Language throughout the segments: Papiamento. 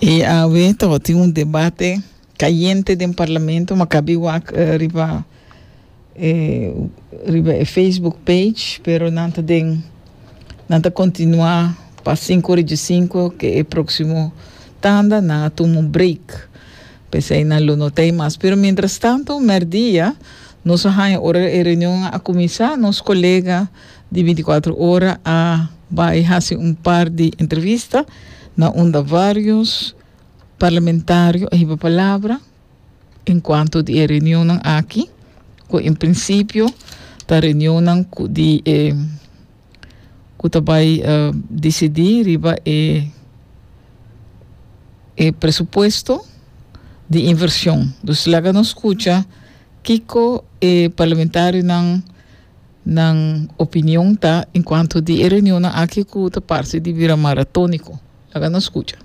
E awe tabatin un debate cayente den Parlamento, Maccabi wak riba e riba e Facebook page, pero nan ta den nan ta continua pa cinco ora dje cinco ke e proximo tanda nan a tuma un break pesey nan lo notey mas. Pero mientras tanto merdia nos a haña ora e reunion a cuminsa nos colega di binticuatro ora a bay haci un par di entrevista na unda varios parlamentario a hiba palabra en cuanto di e reunionnan aki cu en principio ta reunionnan cu di e cu ta bay dicidi riba e e presupuesto di inversion. Dus laga nos scucha kico e parlamentarionan. Nan opinion ta en cuanto di e reunionnan aki cu ta parce di bira maratonico? Laga nos scucha.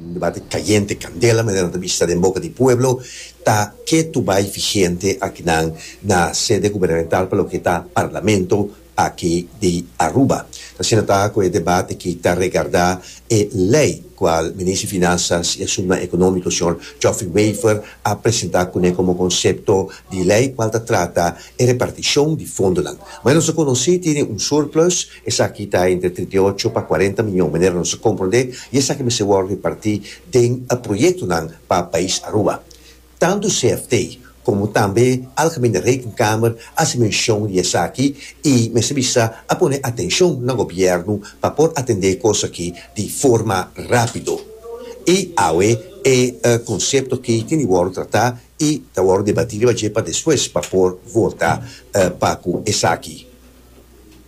Un debate cayente, candela, manera nan ta bishita den boca di pueblo, ta ke tu bay vigente akinan na sede gubernamental pa loke ta Parlamento aki di Aruba. Asina ta cu e debat aki ta regarda e ley cual Minister Finanzas y Asumnan Economico Señor Geoffrey Wever a presenta cune como concepto di ley cual ta trata e reparticion di fondonan. Manera nos a conoci tene un surplus, esaki ta entre trinta i ocho pa cuarenta miyon manera nos a comprende y esaki mester wor reparti den e proyectonan pa pais Aruba. Tantu CFT komo tambe Algemene Rekenkamer a hasi menshon di esaki i mester bisa a pone atenshon na gobièrnu pa por atendé kos aki di forma rápido. I awe e konsepto aki tin di wòrdu tratá i ta wòrdu debatí riba dje pa despues pa por volta pa ku esaki.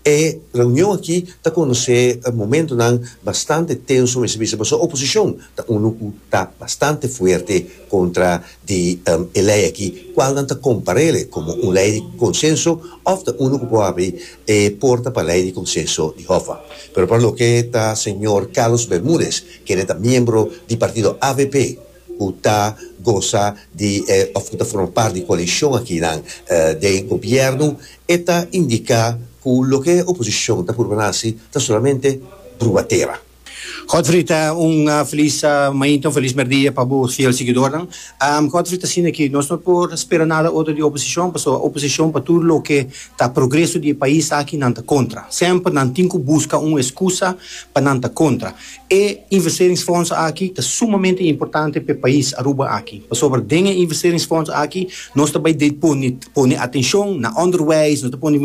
E reunion aki ta conoce momentonan bastante tenso mester bisa pasobra oposicion ta uno cu ta bastante fuerte contra di e ley aki cual nan ta comparele como un ley di consenso of ta uno cu por habri e porta pa ley di consenso di Hoffa. Pero pa loke ta señor Carlos Bermudez kende ta miembro di partido avp, ku ta gosa di e òf ku ta forma parti di koalishon akinan den gobièrnu, e ta indiká ku loke e oposishon ta purba hasi ta solamente brubatera. Godfrey ta un felis mainta, un felis mèrdia pa bo fiel siguidornan. Godfrey ta sinti ku nos no por spera nada otro di oposishon, pasobra e oposishon pa tur loke ta progreso di e pais aki nan ta kontra. Semper nan tin ku buska un eskusa pa nan ta kontra. E investeringsfonds aki ta sumamente importante p'e pais Aruba aki, pasobra den e investeringsfonds aki nos ta bai pone pone atenshon na onderwijs, nos ta pone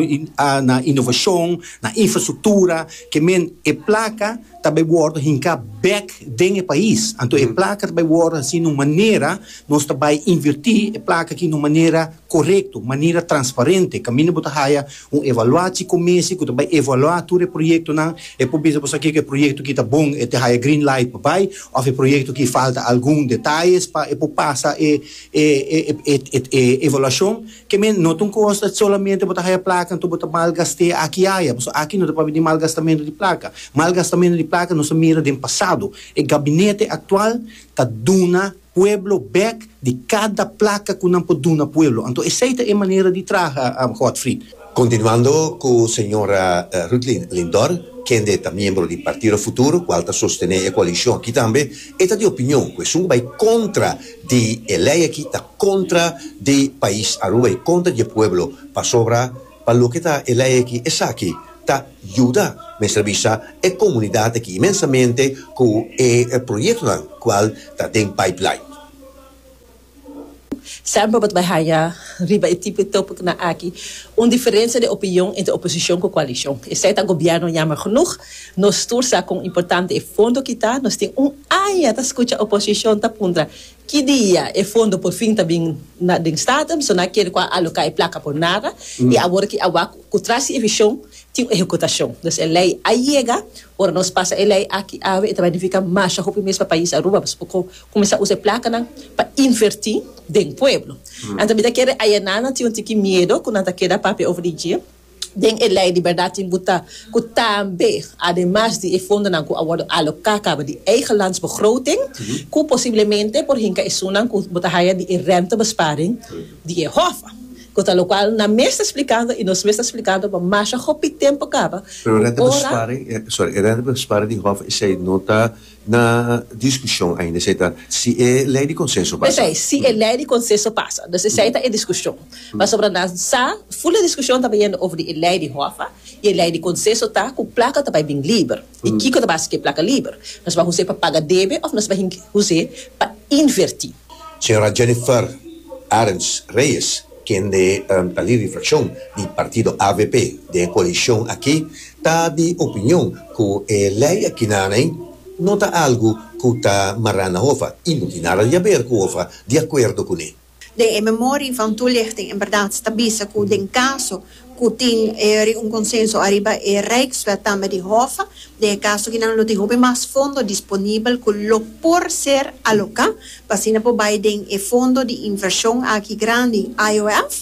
na inovashon, na infrastruktura, ke men e plaka ta bai wòrdu hinká bèk den e pais. Anto e plaka ta bai wòrdu hasi na un manera, nos ta bai invirtí e plaka aki na un manera korekto, manera transparente, kaminda bo ta haya. Un evaluaci comisie cu ta bay evalua tur e proyectonan, e por bisa boso aki cu e proyecto aki ta bon, e ta haya green light pa bay, of e proyecto aki falta algun detalles pa e por pasa e e evaluacion, kemen no ta un cos ta solamente bo ta haya placa enton bo ta malgasté aki y aya, boso aki no ta papia di malgastamento di placa, malgastamento di placa nos a mira den pasado, e gabinete actual ta duna. pueblo bek di kada plaka ku nan por duna pueblo. Anto esei ta e manera di traha, Godfried. Kontinuando ku señora Ruthlin Lindor, kende ta miembro di Partido Futuro, kual ta sostené e koalishon aki tambe, e ta di opinion ku esun ku bai kontra di e lei aki ta kontra di pais Aruba i kontra di e pueblo, pasobra, Pa loke ta e lei aki esaki ta yuda mester bisa e komunidat aki inmensamente ku e proyektonan kual ta den pipeline. Semper bo ta bai haña riba e tipo di tópikonan aki un diferensia di opinion entre oposishon ku koalishon. Esei ta gobièrnu yammer genoeg. Nos tur sa kon importante e fondo ki ta. Nos tin un aña ta skucha oposishon ta puntra Ki dia e fondo por fin ta bin na den Staten, so nan kere ku a aloká e plaka por nada, i awor ki awa ku tras di e vishon tin un ehekutashon. Dus e lei a yega, ora nos pasa e lei aki awe e ta benefika masha hopi mes pa pais Aruba, pasobra bo por kuminsá usa e plakanan pa invertí den pueblo. Anto mi ta kere ayananan tin un tiki miedo ku nan ta keda papia over di dje. Den e Lei di Bèrdat tin bu ta ku tambe, ademas di e fondonan ku a wòrdu aloká kaba di eigelandsbegroting, ku posiblemente por hinka esunnan ku bo ta haya di e rèntebesparing di e hòf. Ku ta lokual nan mes ta splikando i nos mes ta splikando bo masha hopi tempu kaba ku ora. Pero e rèntebesparing, sorry, e rèntebesparing di hòf esei no ta. Na diskushon ainda esei ta si e lei di konsenso pasa. Esei, si e lei di konsenso pasa. Dus esei ta e diskushon. Pasobra nan sa, ful e diskushon ta bai yendo over di e lei di hòfa i e lei di konsenso ta ku plaka ta bai bin liber i kiko ta basa ku e plaka liber. Nos bai usa e pa paga debe òf nos bai hus'é pa invertí? Señora Jennifer Arends Reyes, kende ta lid di frakshon di partido avp den e koalishon aki, ta di opinion ku e lei akinaney no ta algu ku ta mará na hofa i no tin nada di haber ku hofa di akuerdo kuné. Den e memorie van toelichting en berdad ta bisa ku den caso ku tin eri un konsenso ariba e Rijkswet tambe di Hof den e kaso ki nan lo tin hopi mas fondo disponibel ku lo por ser aloká pa asina por bai den e fondo di invershon aki grandi IOF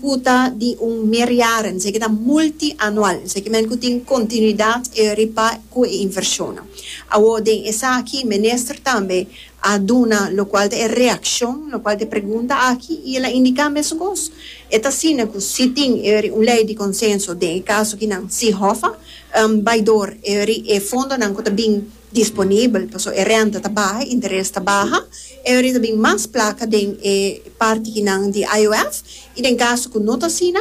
ku ta di un meerjaren, esaki ta multianual, esaki men ku tin kontinuidat riba ku e invershonnan. Awor den esaki Minister tambe a duna lokual ta e reakshon lokual ta e pregunta aki i el a indiká mesukos. E ta asina ku si tin eri un lei di konsenso den e kaso ki nan si hòfa bai dor eri e fondonan ku ta bin disponibel paso e renta ta baha, interes ta baha, eri ta bin mas plaka den e parti ki nan di IOF i den kaso ku no ta asina,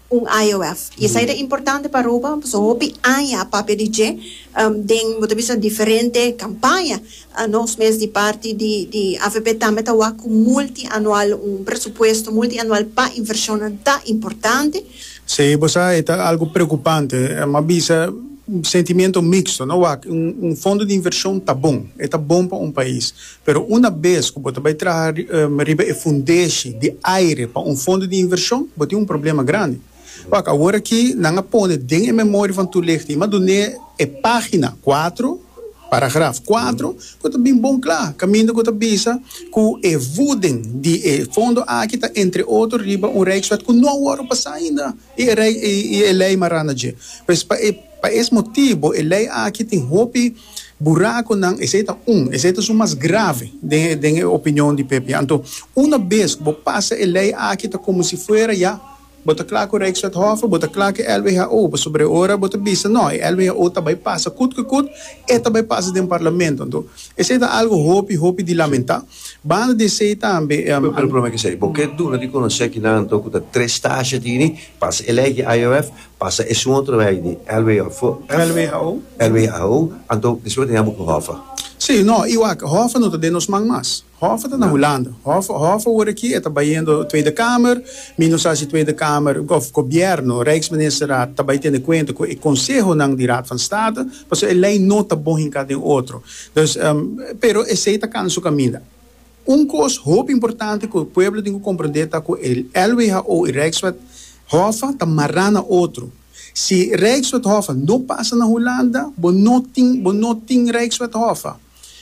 un IOF. I esei ta importante pa Aruba pasobra hopi aña a papia di dje den bo ta bisa diferente kampaña. Nos mes di parti di di avp tambe ta wak ku multianual, un presupuesto multianual pa invershonnan ta importante. Si bo sa e ta algu preokupante, m'a bisa sentimentu miksto. No wak, un fondo di invershon ta bon, e ta bon pa un pais, Pero una bes ku bo ta bai traha riba e fundeshi di aire pa un fondo di invershon, bo tin un problema grandi. Wak, awor aki nan a pone den e memoria van Toelichting, madune e pagina kuatro, paragraf kuatro, ku ta bin bon kla, kaminda ku ta bisa ku e vuden di e fondo aki ta entre otro riba un rijkswet ku no a wòrdu pasá ainda i e lei marana dje. Pues pa e pa es motibu e lei aki tin hopi. Buraconan, esey ta un, esey ta su mas grave den e opinion di pp. Anto, una bes cu bo pasa e ley aki ta como si fuera ya, bo ta cla cu Rijkswethof, bo ta cla cu e LWHO, pasobra e ora bo ta bisa no, e LWHO ta bay pasa cut cu cut, e ta bay pasa den Parlamento. Anto, esey ta algo hopi, hopi di lamenta. Banda di esey tambe. Pero prome cu esey, bo ke duna di conoce aki nan anto cu ta tres tashi tini, pasa e ley aki IOF, Pasa esun otro rei di lwho. Lwho. Lwho, anto despues tin abo ku Hoffer. Si, no, i wak, Hoffer no ta den nos man mas. Hoffer ta na Hulanda. Hoffer, Hoffer wor aki e ta bayendo Tweede Kamer, mi no sa si Tweede Kamer, of Gobièrnu, Rijksministerraad, ta bai tene kuenta ku e konsehonan di Raad van State, pasobra e lei no ta bon hinká den otro. Dus, pero esei ta kana su kaminda. Un kos hopi importante ku e pueblo tin ku komprondé ta ku e LWHO i Rijkswet Hoffa ta mará na otro. Si Rijkswet Hoffa no pasa na Hulanda, bo no tin bo no tin Rijkswet Hoffa.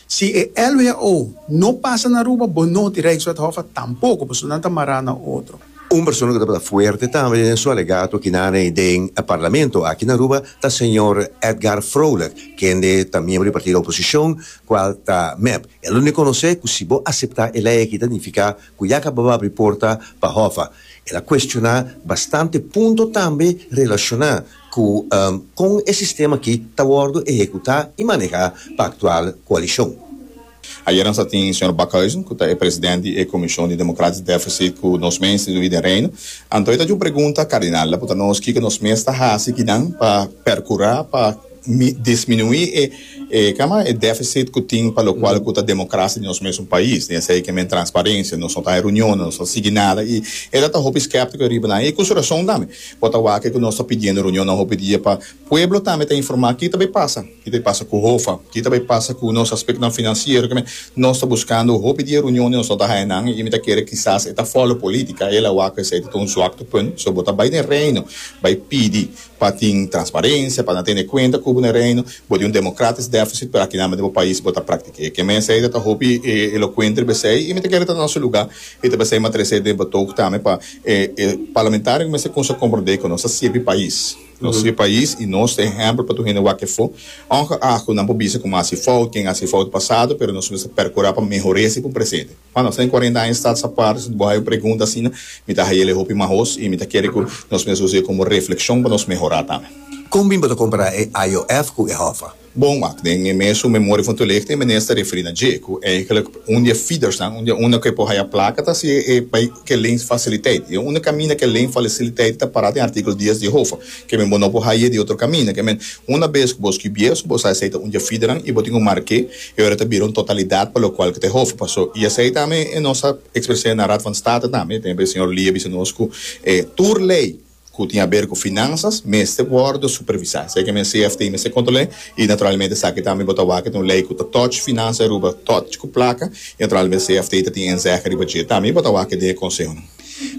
Si e LWHO no pasa na Aruba, bo no tin Rijkswet Hoffa tampoko, pasobra nan ta mará na otro. Un persona ku tabata fuerte tambe den su alegato kinane den e parlamento aki na Aruba ta señor Edgar Vrolijk, kende ta miembro di e partido oposishon, kual ta mep. E lo reconoce cu si bo acepta e ley aki ta nifica cu ya caba bo abri porta pa Hova. El a cuestiona bastante punto tambe relaciona cu con e sistema aki ta wordo ehecuta y maneha pa actual coalicion. Ayer nos a tin señor Backhuizen, cu ta e president di e Comision di Democratisch Deficit cu nos mes institui den Reino. Anto e ta djo un pregunta, Cardinal, laputa nos kico nos mes ta haci kinan pa percura pa. mi disminuí e e kaman e défisit ku tin pa lokual ku ta demokrasia di nos mes un pais di esei ke men transparensia nos no ta e runionnan nos no sigui nada i e ta ta hopi skeptiko riba nan i ku su rason tambe por ta wak ku nos ta pidiendo runionnan hopi dia pa pueblo tambe ta informá kita bai pasa kita bai pasa ku hofa kita bai pasa ku nos aspektonan finansiero ke men nos ta buskando hopi dia runion di nos no ta haña nan i mi ta kere kisas e ta fòlo politika i el a wak ku esei ta ta un zwakte punt so bo ta bai den reino bai pidi. Pa tin transparencia, pa nan tene cuenta cu bo na Reino, bo di un democratisch deficit, pero akinan bo pais bo ta practiqué. Ke mester ei ta ta hopi elocuenter besey y mi ta kere ta nan su lugar y ta besey ma trece den betoog tambe pa e parlamentarionan mester cunsha comprende cu nos ta sirbi pais. Nos sirbi pais y nos ta ehempel pa tur hende wak efo, ongeacht cu nan por bisa cu bo a haci fout, ken a haci fout pasado, pero nos mester percura pa mehor'e si por presente. Pa nos ten cuarenta aña Stads Apart, bo hay un pregunta asina, mi ta hay'el e hopi mas hoos y mi ta kere cu nos mester usa e como reflexion pa nos mehora tambe. Con bin bo ta compara e IOF cu e Hoffa? Bon, wak, den e mes su Memoria van Toelicht e meneer ta referi na dje, cu eigenlijk un di e feedersnan, un di e unda cu e por haya placa, ta si e bay cu e ley faciliteit. Y e unda caminda cu e ley faciliteit ta para den artikel dies di e Hoffa. Kemen bo no por haye di otro caminda. Kemen, una bes cu bo scubié, su bo sa esei ta un dja fideran y bo tin un marqué, e ora ta bira un totalidad pa locual cu ta e hof. Paso, y esei tambe e nos a expresé na Raad van State tambe, tempo e Señor Lee a bisa nos cu e tur ley cu tin aber cu finanzas mester wordo supervisa. Esei kemen CFT mester control'é y naturalmente esaki tambe bo ta wak e ta un ley cu ta touch finanza e Aruba, touch cu placa y naturalmente CFT ta tin enzehe riba dje tambe y bo ta wak e den e consehonan.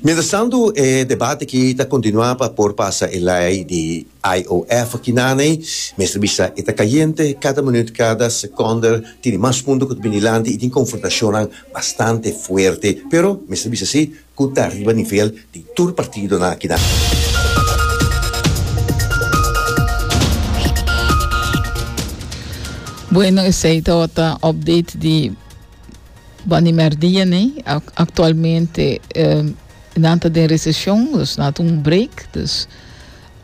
Mientrastantu e debat aki ta kontinuá pa por pasa e lei di IOF aki naney. Mester bisa e ta kayente, kada minüt, kada sekonder tindi mas punto ku ta bini lanti i tin konfrontashonnan bastante fuerte. Pero mester bisa sí ku ta riba nivel di tur partidonan aki nan. Bueno, esei tabata update di. Bo a nim'er dia nee. Actualmente nan ta den recesión, dus nan ta un break, dus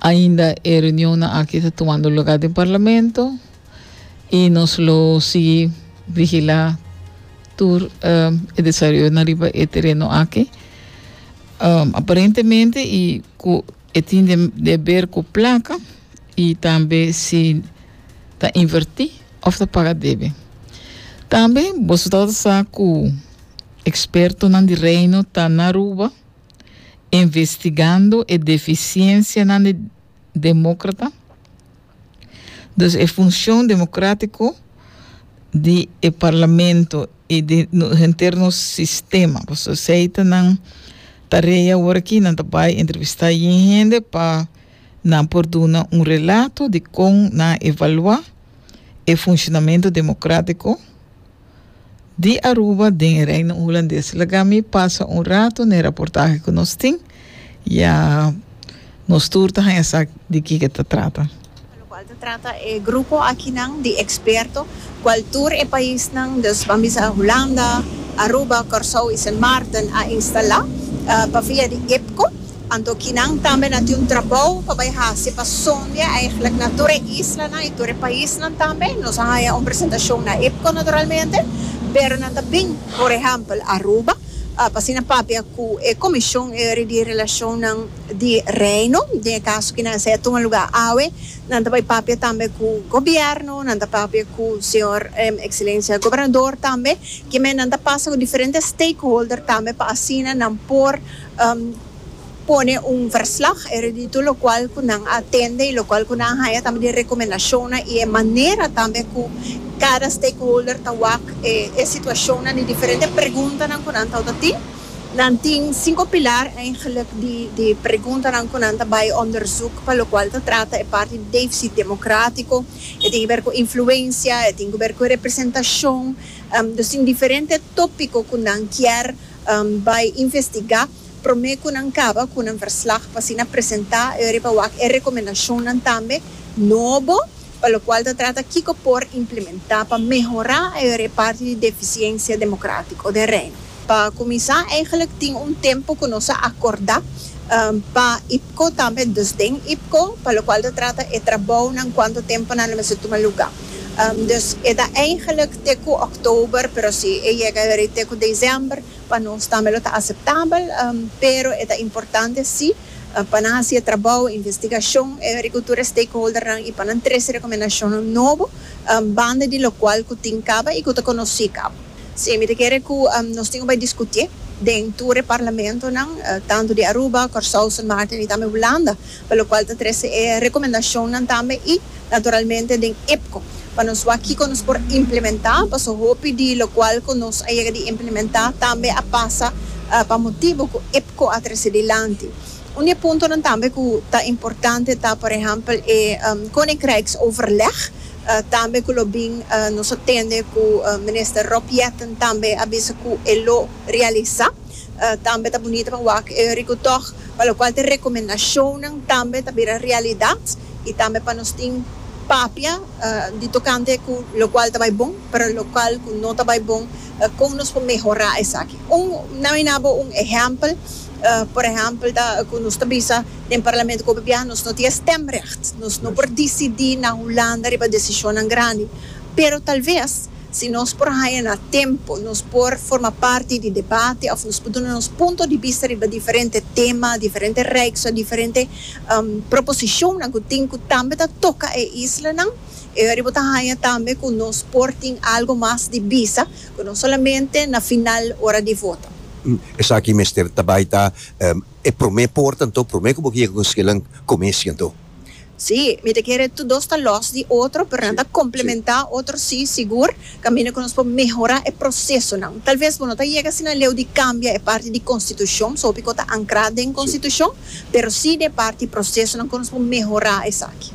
ainda e reunionnan aki ta tumando lugá den Parlamento i nos lo sigui vigilá tur e desaroyonan riba e tereno aki. Aparentemente i ku E tin den deber cu placa y tambe si ta inverti of ta paga debe. Tambe boso tabata sa cu expertonan di Reino ta na Aruba investigando e deficiencianan di Democrata. Dus e funshon demokratiko di e parlamento i di henter nos sistema. Pasobra esei ta nan tarea awor aki, nan ta bai entrevistá yin hende pa nan por duna un relato di kon nan evaluá e funshonamentu demokratiko. Di Aruba den e Reino Hulandes. Laga mi pasa un rato n'e raportahe cu nos tin, ya nos tur ta haña sa di kico ta trata. Pa locual ta trata e grupo akinan di experto, cual tur e paisnan, dus Bambisa Hulanda, Aruba, Corsou y Sint Maarten a instala pa via di IPCO. Anto kinan tambe na tin un trabou pa bai hasi pa sondia eigenlijk na tur e islanan i tur e paisnan tambe. Nos a haña un presentashon na IPCO naturalmente, pero nan ta bin, por ehèmpel, Aruba pa asina papia ku e komishon di relashonnan di Reino, den e kaso kinan esei a tuma lugá awe. Nan ta bai papia tambe ku gobièrnu, nan ta papia ku señor Ekselensia Gobernador tambe. Kimen nan ta pasa ku diferente stakeholder tambe pa asina nan por. pone un verslag eruditu lokual ku nan a atende i lokual ku nan a haña tambe di rekomendashonnan i e manera tambe ku kada stakeholder ta wak e situashonnan di diferente preguntanan ku nan tabata tin. Nan tin sinku pilar eigentlik di preguntanan ku nan ta bai onderzoek pa lokual ta trata e parti di defisit demokratiko, e tin ke ber ku influensia, e tin ku ber ku representashon, dus tin diferente topiko ku nan kier. bai investigá promé ku nan kaba ku nan verslag pa asina presentá e riba wak e rekomendashonnan tambe nobo pa lokual ta trata kiko por implementá pa mehorá e riba parti di defisiensia demokratiko den Reino. Pa kuminsá eingelik tin un tempu ku nos a akordá pa IPCO tambe, dus den IPCO, pa lokual ta trata e trabounan kuantu tempu nan lo mester tuma lugá. Dus e ta eigenlik te ku oktober, pero si e yega rei te ku desèmber, pa nos tambe lo ta aseptabel. Pero e ta importante sí pa nan hasi e trabou, investigashon, e e riku tur e stakeholdernan i pa nan trese rekomendashonnan nobo banda di lokual ku tin kaba i ku ta konosí kaba. Sí, mi ta kere ku nos tin ku bai diskutié den tur e parlamentonan, tantu di Aruba, Kòrsou, Sint Maarten i tambe Hulanda. pa lokual ta trese e rekomendashonnan tambe i naturalmente den IPCO pa nos wak kiko nos por implementá paso hopi di lokual ku nos a yega di implementá tambe a pasa pa motibu ku IPCO a trese dilanti. Un di e puntonan tambe ku ta importante ta por ehèmpel e Koninkrijksoverleg tambe ku lo bin nos a tende ku Minister Rob Jetten tambe a bisa ku e lo realisá. Tambe ta bunito pa wak e riku tòg, pa lokual te rekomendashonnan tambe ta bira realidat i tambe pa nos tin papia di tokante ku lokual ta bai bon, pero lokual ku no ta bai bon, kon nos por mehorá esaki. Un, nan a mina bo un ehèmpel, por ehèmpel ta ku nos ta bisa den parlamento ku hopi biaha nos no tin e stèmrègt, nos no por disidí na Hulanda riba desishonnan grandi, pero tal ves. Si nos por haña na tempu, nos por forma parti di debate òf nos por duna nos punto di bista riba diferente tema, diferente reeks òf diferente proposishonnan ku tin ku tambe ta toka e islanan. E hori bo ta haña tambe ku nos por tin algu mas di bisa ku no solamente na final ora di voto. Esaki mester ta bai ta e promé porta anto, promé ku bo ke yega ku un skillan, kuminsha anto. Sí, mi ta kere tur dos ta lòs di otro, pero nan ta komplementá otro sí, sigur, kaminda ku nos por mehorá e prosesonan. Talves bo no ta yega asina leu di kambia e parti di konstitushon, so piko ta ankrá den konstitushon, pero sí den parti prosesonan ku nos por mehorá esaki.